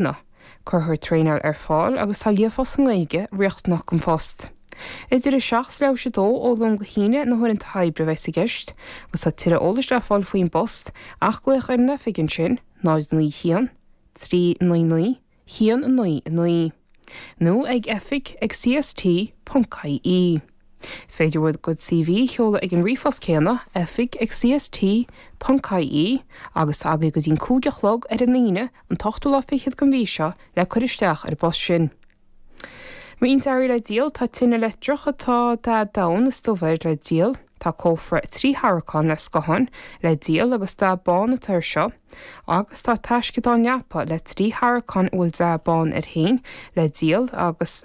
Nó. Cuirthear traenáil ar fáil agus tá líofacht sa nGaeilge riachtanach don phost. Idir 7 is leathuair tar éis 2 ó Luan go hAoine na huaireanta oibre a bheas i gceist agus tá tuilleadh eolais le fáil faoin bpost ach glaoch ar an oifig ansin 091 399 199 nó ag oifig ag CST.ie. Is féidir dhuit do CV a sheoladh ag an ríomhphost céanna, oifig@cst. ie, agus tá agaidh go dtí'n cúig a chlog ar an Aoine, an t-ochtú lá fichead den mhí seo, le cur isteach ar an bpost sin. Roinnt earraí le díol, Tá tine leictreach atá dath donn is dubh air le díol. Tá cófra trí tharraiceán le scáthán le díol agus dath bán atá air seo. Agus tá taisceadán leapa le trí tharraiceán a bhfuil dath bán air féin le díol agus.